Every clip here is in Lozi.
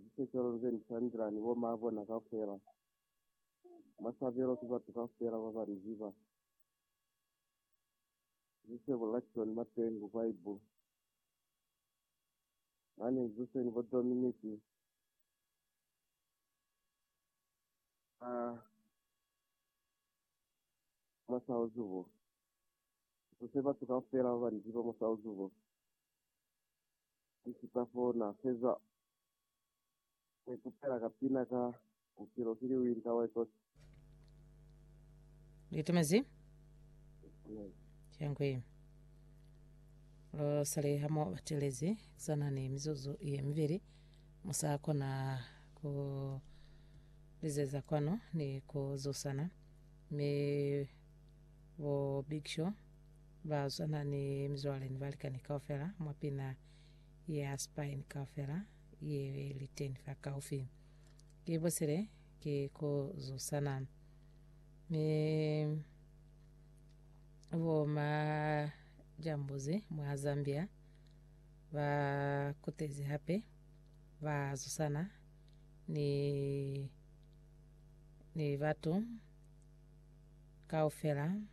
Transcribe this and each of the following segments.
Lisecelo nze ni sandila ni bo maa bona kaufela. Mwa sabelo ki batu kaufela baba li ziba. Nze se bolela kico ni mateñi ku Bibele. Mane nze se ni bo Dominic ba mwa South bo. Nze se batu kaufela baba ni ziba mwa South bo. Ki sipa fo na feza ku ikutela ka pina ka Bupilo ki Liwinta wa Ikoti. Lu itumezi? Amen. Cangwi. Lu sali ha mo batelezi sana ni mizuzu ye mibili. Mu sa kona ku lizeza kwanu ni ku zusana. Mi bo Big Show Ba swana ni mizwale ni balikani kaufela mwa pina ya Spain kaufela ye li teñi fa kaufi. Ki busile, ki ku zusana. Mi bo majambuzi mwa Zambia ba kutezi hape ba zusana ni, ni batu kaufela.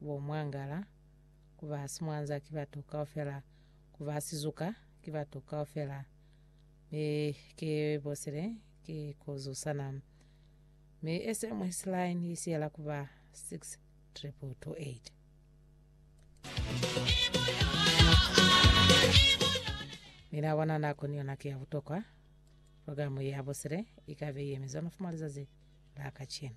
bo mwangala, ku ba simwanza ki batu kaufela, ku ba sizuka ki batu kaufela, mi ki bosile ki ku zusana. Mi SMS line i siyela ku ba 6228. Mi na bona nako ni yona ki ya butokwa. Programu ya bosile i ka be i yemizwe mafumo a lizazi la kacenu.